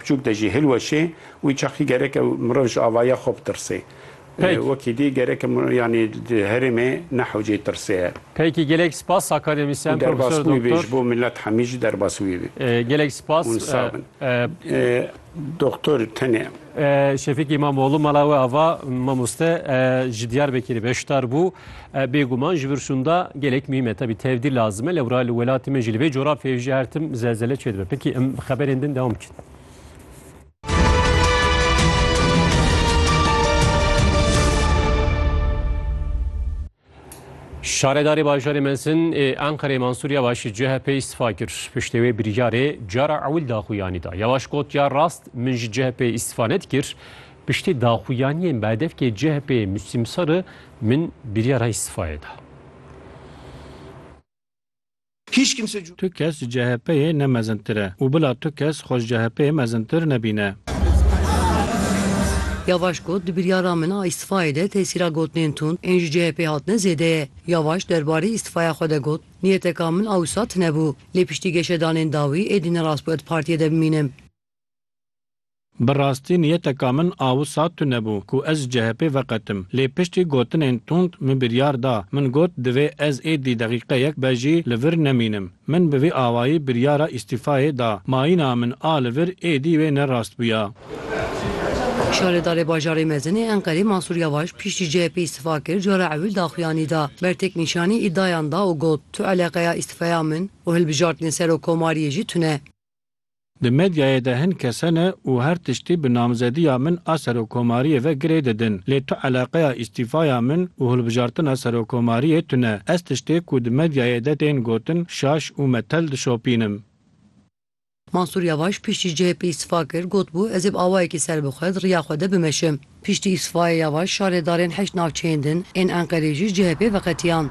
Piçûk de jî hilweşê wî çaxî gereke mirov ji avaya xwe bitirsê. Pêk. Wekî dî gereke mirov yanî di herêmê nehewcê tirsê ye. Pêkî gelek spas Sakarya Mîsyan Û derbas Profesor wî bê ji Doktor. bo millet hemî jî derbas wî bê. Gelek spas. Hûn sağ bin. Doktor tenê. Şefîk Îmamoğlu mala we ava mamoste ji Diyarbekirê beşdar bû. Bêguman ji vir şûnda gelek muhîm e. Tevî tevdî lazim e lewra li welatê me jî li vê coğrafyayê jî her tim zelzele çêdibe. Pekî em bi xeberên din dewam bikin. Şaredarê bajarê Mesin ê Enqerê Mansur Yavaş CHP îstifa kir. Piştê wê biryarê cara ewil daxuyanî da. Yavaş got ya rast min ji CHP îstifa nedikir. Piştî daxuyaniyên bi hedefkê CHP'ê Müslim Sarı Min biryara îstîfayê da. Tu kes ji CHP'ê ne mezintir e û bila tu kes xwe ji CHP'ê mezintir nebîne. Yavaş got, Di biryara min a îstîfayê de tesîra gotinên tund ên ji CHP'ê hatine zêde ye. Yavaş derbarê îstîfaya xwe de got, Niyeteka min a wisa tune bû. Lê piştî geşedanên dawî êdî ne rastbû ez di partiyê de bimînim. Bi rastî niyeteka min a wisa tune bû ku ez ji CHP'ê veqetim. Lê piştî gotinên tund min biryar da. Min got divê ez êdî deqîqeyek be jî li vir nemînim. Min bi vî awayî biryara îstîfayê da. Mayîna min a li vir êdî wê ne rast bûya. Şaredarê Bajarê Mezin ê Enqerê Mansûr Yavaş piştî CHP'ê îstîfa kir cara ewil daxuyanî da. Ber têknîşanî îddayan da û got Tu eleqeya îstîfeya min û hilbijartinên Serokomariyê jî tune. Di medyayê de hin kes hene û her tiştî bi namzediya min a Serokkomariyê ve girê didin. Lê tu eleqeya îstîfaya min û hilbijartina Serokkomariyê tune. Ez tiştê ku di medyayê de tên gotin şaş û metel dişopînim. Mansûr Yavaş piştî CHP îstîfa kir, gotbû ez ê bi awayekî serbixwe di riya xwe de bimeşim. Piştî îstîfayê Yavaş şarêdarên heşt navçeyên din ên Enqerê jî CHP'ê veqetiyand.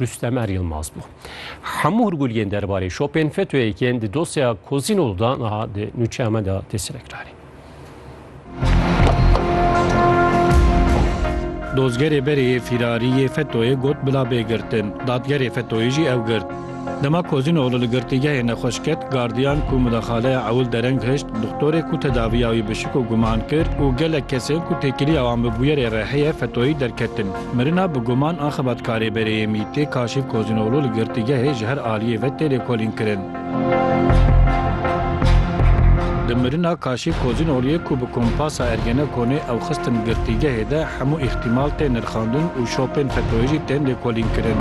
Rustemer Yilmaz bû. Hemû hurguliyên derbarê şopên FETÖ'yê yên di dosyeya Kozînol de niha di nûçeya me de tê selekiranîn. Dozgerê berê yê fîrarî yê FETÖ'yê got bila bê girtin. Dadgerê FETÖ'yê jî ew girt. Dema Kozînol li girtîgehê nexweş ket, gardiyan ku mudaxaleya ewil dereng hişt, doxtorê ku tedaviya wî bi şik û guman kir û gelek kesên ku têkiliya wan bi bûyerê rêheyê FETÖ'yî derketin. Mirina bi guman a xebatkarê bereyê MቘT'ê Kaşîf Kozînoglu li girtîgehê ji her aliyê ve tê lêkolînkirin. Di mirina Kaşîf Kozînogluyê ku bi kompasa Ergenekonê ew xistin girtîgehê de hemû îhtîmal tên nirxandin û şopên FETÖ'yê jî tên lêkolînkirin.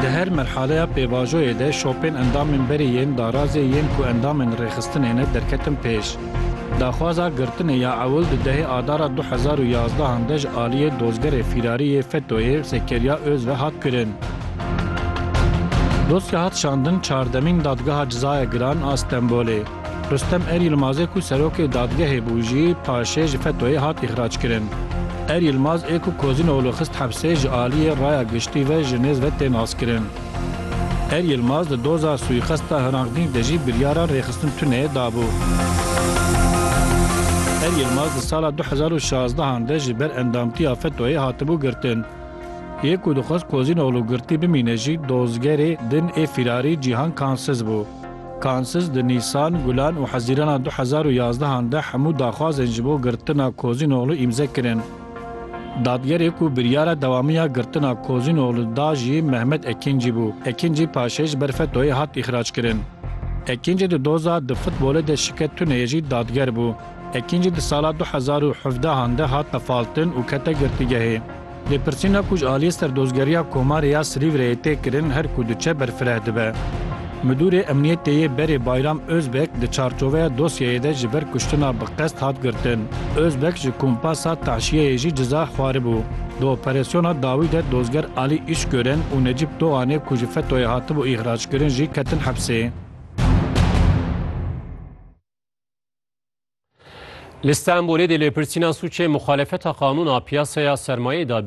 Di her merhaleya pêvajoyê de şopên endamên berê yên darazê yên ku endamên rêxistinê ne derketin pêş. Daxwaza girtinê ya ewil di dehê Adara du hezar û yazdehan de ji aliyê dozgerê fîrarî yê FETÖ'yê Zekeriya Öz ve hat kirin. Dosya hat şandin çardemîn Dadgeha Cizaya Giran a Stenbolê. Rustem Er Yilmazê ku serokê dadgehê bû jî paşê ji FETÖ'yê hat îxrac kirin. Er Yilmaz ê ku Kozînoglû xist hepsê ji aliyê raya giştî ve ji nêz ve tên askirin. Her Yilmaz di doza suîqesta Hrangdîng de jî biryara rêxistin tune dabû. Her Yilmaz di sala du hezar û şazdehan de ji ber endamtiya FETO'yê hatibû girtin. Yê ku dixwest Kozînoglu girtî bimîne jî dozgerê din ê fîrarî Cîhan Kansiz bû. Kansiz di Nîsan, Gulan û Hezîrana du hezar û yazdehan de hemû daxwazên ji bo girtina Kozînoglu îmze kirin. Dadgerê ku biryara dewamiya girtina Kozînoglû da jî Mehmet Ekîncî bû. Ekîncî paşê ji ber FETO'yê hat îxrackirin. Ekîncî di doza di futbolê de şike tuneyê jî dadger bû. Ekîncî di sala du hezar û hevdeh an de hat tefaltin û kete girtîgehê. Lêpirsîna ku ji aliyê Serdozgeriya Komarê ya Silîvreyê tê kirin her ku diçe berfireh dibe. Midûrê Emniyetê yê berê Bayram Ozbek di çarçoveya dosyeyê de ji ber kuştina bi qest hat girtin. Ozbek ji kumpasa tahşiyeyê jî ciza xwaribû. Di operasyona dawî de dozger Alî Îşgören û Necîp Doğanê ku ji FETÖ'yê hatibû îxrackirin jî ketin hepsê. Li Stenbolê dê lêpirsîna sûcê muxalefeta qanûna piyasaya sermayeyê da